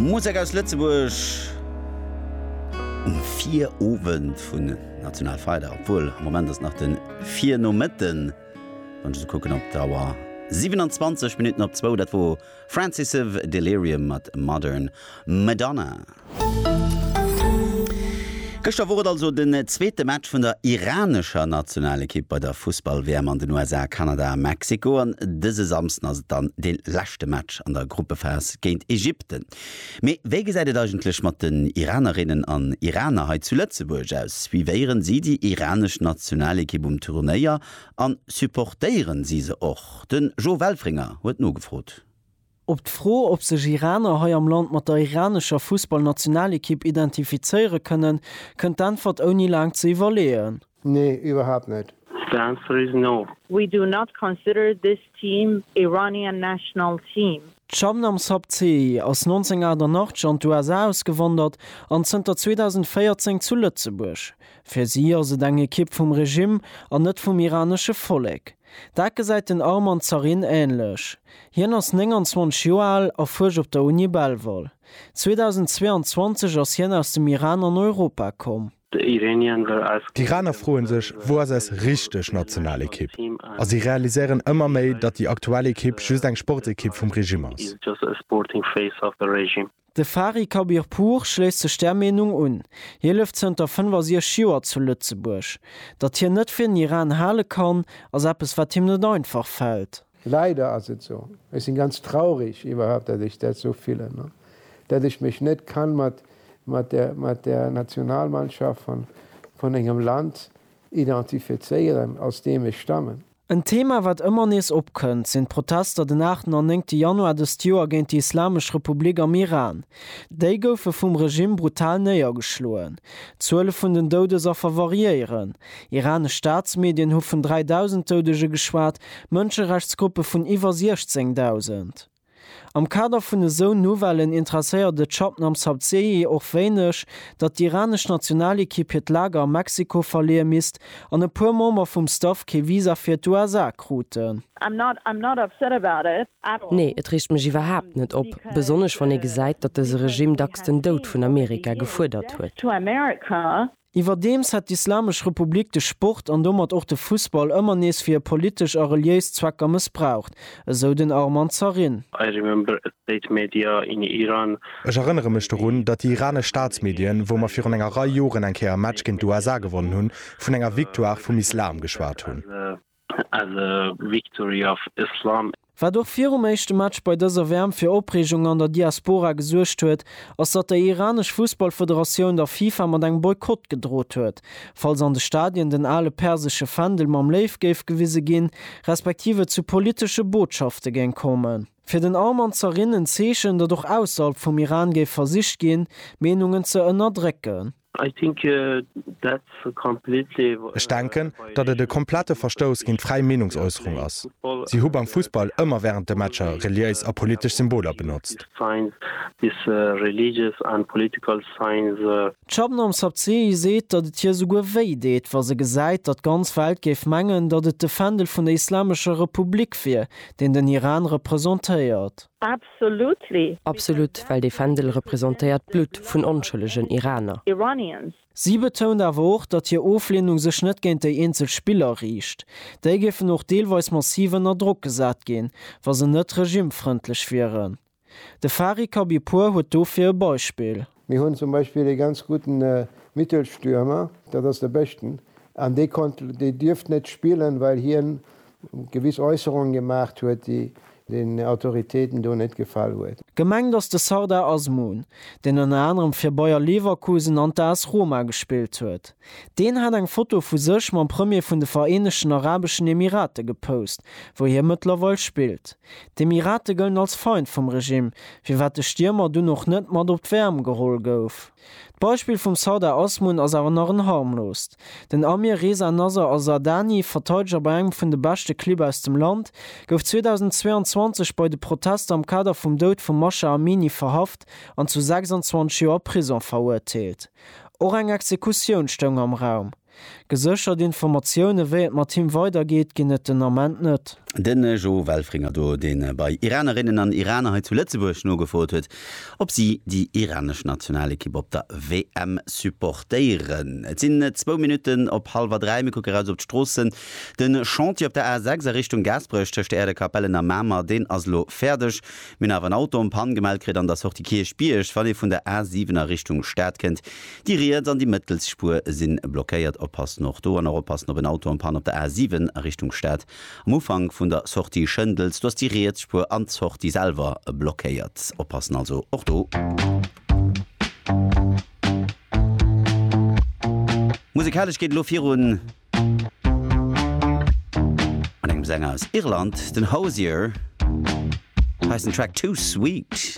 Musek aus Lëtzebuerg um Virowend vun Nationalfeierdag, obwuel am Moment ass nach de Virnomëtten, wann ech esou kucken op d'Auer, 27 Minutten op zwou. Dat wor Francis of Delirium mat Modern Madonna. Gëschter wor et also den zweete Match vun der iranescher Nationalekipp bei der Fussball-WM an den USA, Kanada a Mexiko. An dëse Samsden ass et dann dee leschte Match an der Gruppephas géint Ägypten. Mee wéi gesäit et eigentlech mat den Iranerinnen an Iraner hei zu Lëtzebuerg aus? Suivéieren si déi iranesch Nationalekipp um Turnéier an supportéieren si se och? De Jo Welfringer huet nogefrot. Op d'Fro, ob sech Iraner hei am Land mat der iranescher Fussballnationalekipp identifizéiere kënnen, kënnt d'Äntwert ouni laang ze iwwerleeën. Nee, iwwerhaapt net. The answer is no. We do not consider this team Iranian national team. D'Shabnam Sabzeei ass 1988 an d'USA ausgewandert an zënter 2014 zu Lëtzebuerg. Fir si ass et eng Ekipp vum Regimm an net vum iranesche Vollek. Dat gesäit den Armand Zarin änlech. Hien ass 29 Joer al a fuerscht op der Uni Belval. 2022 ass hien aus dem Iran an Europa komm. D'Iraner froe sech, wou ass eis richteg Nationalekipp? A si realiséieren ëmmer méi, datt déi aktuell Ekipp just eng Sportsekipp vum Regime ass. De Fari Khabirpour schléisst sech där Meenung un. Hie lëft zënter 65 Joer zu Lëtzebuerg. Datt hien net fir den Iran hale kann, ass eppes wat him net einfach fält. Leider ass et sou. Ech sinn ganz traurig iwwerhaapt dat ech dat sou fillen, dat ech mech net kann mat der Nationalmannschaft vun engem Land identifizéieren aus deem ech stammen. En Thema wat ëmmer nees opkënnt, sinn d'Protester den aachten an néngte Januar dëst Joer géint déi Islamesch Republik am Iran. Déi goufe vum Regimm brutal néiergeschloen. D'Zuele vun den Doudesaffer variéieren. Iranesch Staatsmedien hu vun 3.000 Doudege geschwat, Mënscherechtsgruppe vun iwwer 16.000. Am Kader vun esou Nouvellen interesséiert et Shabnam Sabzeei och wéineg, datt d'iranesch Nationalekipp hiert Lager a Mexiko verleeë misst an e puer Member vum Staff kee Visa fir d'USA kruten. Nee, et reegt mech iwwerhaapt net op, besonnesch wann ee gesäit, datt dëse Regime dacks den Doud vun Amerika gefuerdert huet. Iwwerdeems hätt d'Islamesch Republik de Sport an domat och de Fussball ëmmer nees fir hir politesch a reliéis Zwecker mëssbraucht, esou den Arman Zarin. I remember a state media in Iran. Ech erënnere mech dorun, datt déi iranesch Staatsmedien, wou mer virun enger Rei Joren eng Kéier e Match géint d'USA gewonnen hunn, vun enger Victoire vum Islam geschwat hunn. as a victory of Islam. Wat och virum éischte Match bei dëser WM fir Opreegung an der Diaspora gesuergt huet, ass datt déi iranesch Fussballfederatioun der FIFA mat engem Boykott gedrot huet, falls an de Stadien den ale persesche Fändel mam Léiw géif gewise ginn, respektiv et zu politesche Botschafte géing kommen. Fir den Arman ze erinn, en Zeechen, datt och ausserhalb vum Iran géif versicht ginn, d'Meenungen ze ënnerdrécken. Ech denken, datt et e komplette Verstouss géint d'fräi Meenungsäusserung ass. Si hu beim Fussball ëmmer wärend de Matcher reliéis a politesch Symboler benotzt. D'Shabnam Sabzehi seet, datt et hir souguer wéi deet, wa se gesäit, datt d'ganz Welt géif mengen, datt et de Fändel vun der Islamescher Republik wier, deen den Iran representéiert. Absolut, well dee Fändel representéiert d'Blutt vun onschëllegen Iraner. Si betount awer och, datt hir Ofleenung sech net géint déi eenzel Spiller riicht. Déi géifen och deelweis massiv ënner Drock gesat ginn, wa se net regimefrëndlech wieren. De Fari Khabibpour huet dofir e Beispill. Mir hunn zum Beispill ee ganz gudden Mittelstürmer, dat ass de Beschten, an dee konnt, dee dierft net spillen, well hien gewiss Äusserungen gemaacht huet, déi den Autoritéiten do net gefall huet. Gemengt ass de Sardar Azmoun, deen ënner anerem fir Bayer Leverkusen an d'AS Roma gespillt huet. Deen hat eng Foto vu sech mam Premier vun de Vereenegten Arabeschen Emirate gepost, wou hie mëttlerweil spillt. D'Emirate gëllen als Feind vum Regimm, firwat de Stiermer dunn och net mat op d'WM geholl gouf. D'Beispill vum Sardar Azmoun ass awer nach en harmloost. Den Amir Reza Nasr Al-Zardani, Verteideger bei engem vun de beschte Clibb aus dem Land, gouf 2022 bei de Protester am Kader vum Doud vum Masha Amini verhaft an zu 26 Joer Prisong verurteelt. Och eng Exekutioun stoung am Raum. Geséchert Informatioune wéi et mat him weider geet, ginn et den Ament net. Den Jo Welfringer do, deen bei Iranerinnen an Iraner hei zu Lëtzebuerg nogefrot huet, ob si déi iranesch Nationalekipp op der WM supportéieren. Et sinn zwou Minutten op hallwer dräi. Mir kucke raus op d'Stroossen. De Chantier op der A6 a Richtung Gaasperech tëscht Äerdekapellen a Mamer, deen ass elo fäerdeg. Mir hunn awer en Auto en panne gemellt kritt an der Sortie Kierchbierg, wann ee vun der A 7 a Richtung Stad kënnt. Déi riets an déi mëttels Spuer si blockéiert. Oppassen och do an och oppassen op en Auto en panne op der A 7 a Richtung Stad am Ufank vun der Sortie Schëndels. Do ass déi riets Spuer an d'Sortie selwer blockéiert. Oppassen also och do. Musekalesch geet et elo virun. An engem Sänger aus Irland, den Hozier, heissen Track Too Sweet.